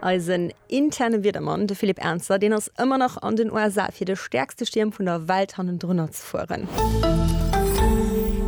Eisen interne Wiedermann, de Philippe Ernzer, deen ass ëmmer nach an den USA fir de stäerkste Stierm vun der Welt hannendrunner ze fueren.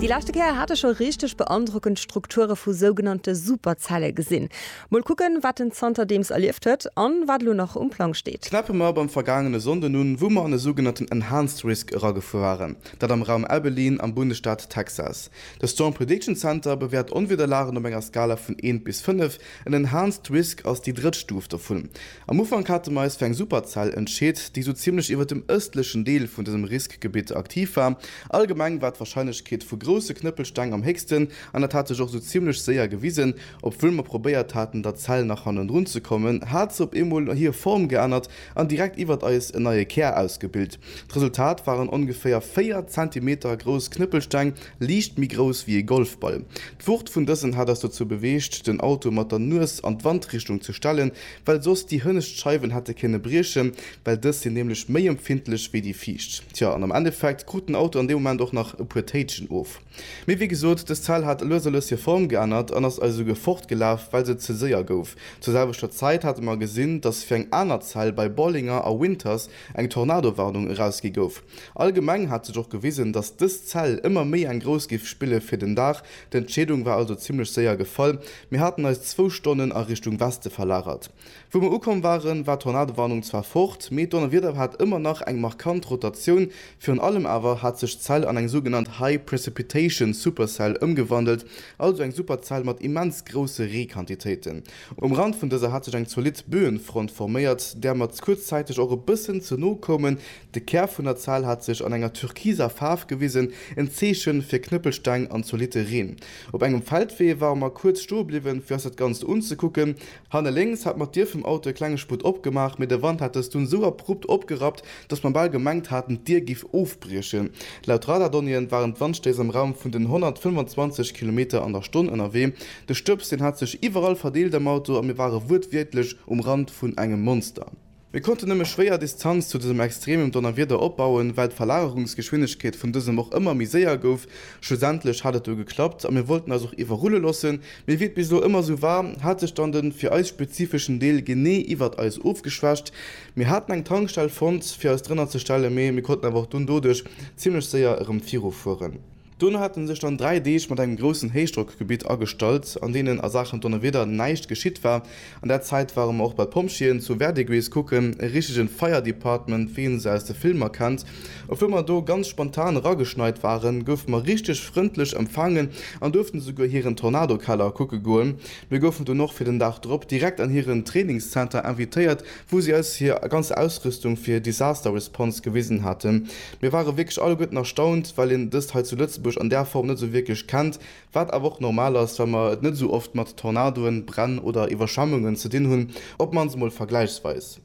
Déi leschte Kéier hat e scho richteg beandrockend Strukture vu sougenannte Superzelle gesinn. Mol kucken, wat en zanterdeems erlieft huet an wat elo nach um Plang steet. Knäppe mer beim vergaangene Sonnden un, wou mer an e sougenannten Enhanced Risk eragefuer waren, dat am Raum Abilene am Bundesstaat Texas. De Storm Prediction Center bewäert Onwiederlagen op enger Skala vun 1 bis 5, en Enhanced Risk ass déi drëtt Stuf dovun. Am Ufank hate mer eis fir eng Superzell entscheet, déi esou zimmlech iwwert dem ëstlechen Deel vun dësem Riskgebitt aktiv war. Allgemeng war d'Warscheinlechkeet vu grousse Knëppelsteng am héchsten an dat hat sech och esou zimmlech séier gewisen. Obwuel mer probéiert haten der Zell nach hannendrun ze kommen, hat se op eemol hir Form geännert an direkt iwwert eis en neie Kär ausgebilt. D'Resultat waren ongeféier 4 Zentimeter grouss Knëppelsteng, liicht méi grouss wéi ee Golfball. D'Wucht vun dësen hat eis dozou beweegt, den Auto mat der Nues an d'Wandrichtung ze stellen, well soss déi hënnescht Scheiwen hätte kënne briechen, well dës sinn nämlech méi empfindlech wéi déi viischt. Tja, an am Endeffekt krut den Auto an deem Moment och nach e puer Téitschen of. Mee wéi gesot, dës Zell hat lues a lues hir Form geännert an ass also ge fortgelaf, well se ze séier gouf. Zur selwechter Zäit hate mer gesinn, datt fir eng aner Zell bei Bollinger a Winters eng Tornadowarnung erausgi gouf. Allgemeng hat sech och gewisen, datt dës Zell ëmmer méi eng grouss géif spille fir den Dag. D'Entscheedung war also zimmlech séier gefall, mir haten eis zwou Stonnen a Richtung Weste verlagert. Wou mer ukomm waren, war d'Tornadowarnung zwar fort, mee d'Donnerwieder hat ëmmer nach eng markant Rotatioun. Virun allem awer hat sech d'Zell an eng sougenannt High Precipitation Supercell ëmgewandelt, also eng Superzell mat immens grousse Reequantitéiten. Um Rand vun dëser hat sech eng zolidd Böenfront forméiert, där mer kuerzzäiteg och e bëssen ze no koumen. De Kär vun der Zell hat sech an enger türkiser Faarf gewisen, en Zeeche fir Knëppelsteng an zolidde Reen. Op engem Feldwee ware mer kuerz stoe bliwwen, fir eis dat Ganzt unzekucken. Hanne lénks hat mer d'Dier vum Auto e klenge Sputt opgemaach, mee de Wand hat dës dunn esou abrupt opgerappt, dass mer bal gemengt haten, d'Dier giff ofbriechen. Laut Radardonnéeën waren d'Wandstéiss am Raum vun den 125 Kilometer an der Stonn ënnerwee. De Stëbs, deen hat sech iwwerall verdeelt am Auto a mir ware wuertwiertlech um Rand vun engem Monster. Mir konnten nëmme schwéier Distanz zu dësem extremem Donnerwieder opbauen, well d'Verlagerungsgeschwindegkeet vun dësem och ëmmer méi séier gouf. Schlussendlech hat et du geklappt a mir wollten eis och iwwerrulle lossen, mee wéi et bis elo ëmmer sou war, hat sech dann den fir eis spezifeschen Deel genee iwwert eis ofgeschwächt. Mir haten eng Tankstell fonnt fir eis drënner ze stellen, mee mir konnten awer och dunn doduerch zimmlech séier erëm virufueren. Dono hate sech dann dräi Deeg mat engem groussen Héichdrockgebitt agestallt, an deenen a Saachen Donnerwieder näischt geschitt war. An där Zäit ware mer och bei d'Pompjeeën zu Verdigris kucken, e richtegen Fire Department, wéi een se aus de Filmer kennt. Obwuel mer do ganz spontan erageschneit waren, goufe mer richteg frëndlech empfaangen an duerften esouguer hiren Tornadokeller kucke goen. Mir goufen dunn och fir den Dag drop direkt an hiren Trainingszenter invitéiert, wou si eis hir ganz Ausrüstung fir Disaster Response gewisen haten. Mir ware wierklech alleguerten erstaunt, well een dëst hei zu Lëtzebuerg an där Form net esou wierklech kennt, wat awer och normal ass, well mer et net esou oft mat Tornadoen, Bränn oder Iwwerschwemmungen ze dinn hunn, op mannst emol vergläichsweis.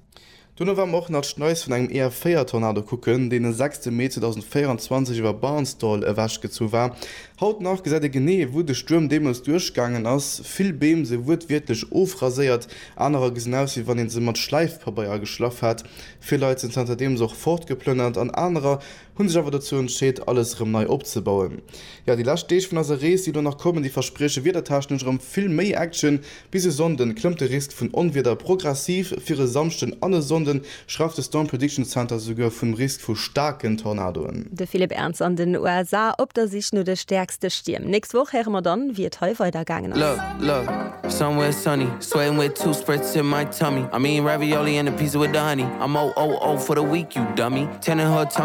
Duerno ware mer och nach d'Schneis vun engem EF4-Tornado kucken, deen de 6 Mee 2024 iwwer Barnsdall ewechgezu war. Haut nach gesäit ee genee, wou de Stuerm deemools duerchgaangen ass, vill Beem si wuertwiertlech ofraséiert, anerer gesinn aus, wéi wann ee se mat Schläifpabeier geschlaff hätt. Vill Leit sinn zanter deems och fortgeplënnert an anerer hunn sech awer dozou entscheet alles erëm nei opzebauen. Jo, déi lescht Deeg vun eiser Rees déi elo nach kommen, déi versprieche wiedertechnesch erëm vill méi Action. Bis e Sonnden klëmmt de Risk vun Onwieder progressiv, fir e Samschden an e Sonnden schrauft de Storm Prediction Center souguer vum Risk vu staarken Tornadoen. De Philippe Ernz an den USA op der Sich no de stäerkste Stierm. Nächst Woch héiere mer dann, wéi et hei weider gaangen ass.